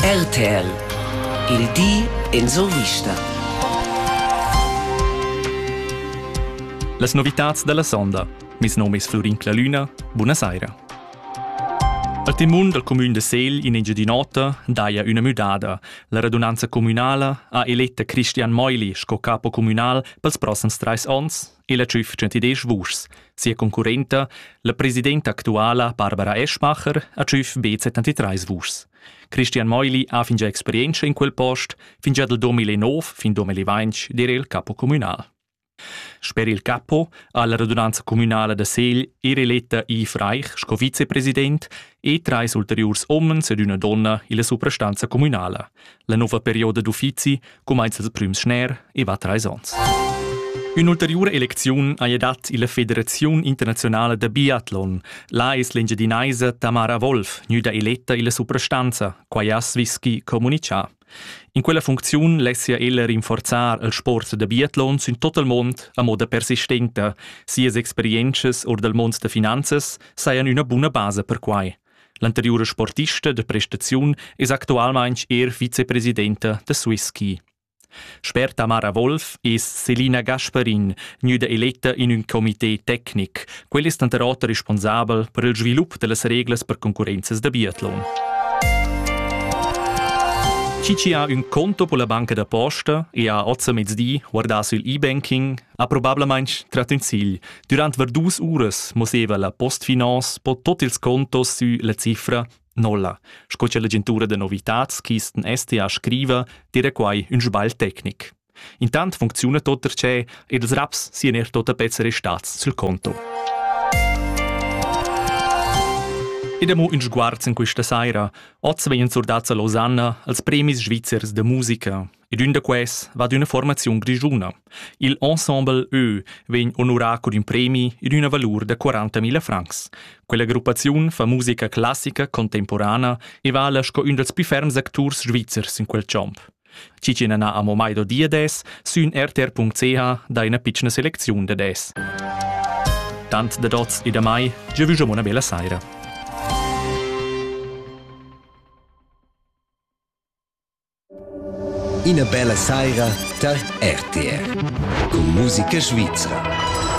RTL Il di en survista. Las novitads da la sonda. Mes nom es Flurin Clalüna. Buna saira. A temun dal cumün de Segl in Engiadin'Ota daja üna müdada. La radunanza communala ha eletta Christian Meuli sco capo communal pels prossams trais ons. e la tschüf 110 vuschs. Sia concurrenta, la presidenta actuala Barbara Eschmacher, ha tschüf be 73 vuschs. Christian Meuli ha fingià experientscha in quel post, fingià dal 2009 fin 2020 dir il capo communal. Sper il capo ha la radunanza communala da Segl er eletta Yves Reich sco vicepresident e trais ulteriurs omens ed üna donna illa suprastanza communala. La nova perioda d'uffizi cumainza il prüm schner e va trais ons. Ün'ulteriura elecziun haja dat illa Federaziun internazionala da biatlon. Là es l'Engiadinaisa Tamara Wolf gnüda eletta illa suprastanza, quai ha Svisky comunichà. In quella funcziun lessia ella rinforzar il sport da biatlon sün tot il mond a moda persistenta. Sias experientschas or dal mond da finanzas sajan üna buna basa per quai. L'anteriura sportista da prestaziun es actualmaing eir vicepresidenta da Swisski. Sper Tamara Wolf es Selina Gasparin gnüda eletta in ün comité tecnic. Quel es tanter oter responsabel per il svilup da las reglas per concurrenzas da biatlon. Chi chi ha ün conto pola banca da posta e ha ozza mezdi guardà sul e-banking Ha probablamain trat ün sigl. Durant var dus uras mosseva la Postfinance po tot ils contos sü la cifra nolla, sco cha l'agentura da novitats Kisten STA scriva, dire quai ün sbagl tecnic. Intant funcziuna tot perche ed ils raps sian er tota pezza restats sul conto. Ed amo ün sguarz in questa saira. Oz vegnan surdats a Losanna als premis svizzers da musica. Ed ün da quels va ad üna formaziun grischuna. Il ensemble Ö vegn onurà cun ün premi ed üna valur da 40.000 francs. Quella gruppaziun fa musica classica contemporana e vala sco ün dals più ferms acturs svizzers in quel champ. Cicina na amo mai do dia des, sün rtr.ch dai üna pitschna selecziun da des. Tant da dots e da mai, già vüsch una bella saira. Ina bella saira tar RTR cun musica svizra.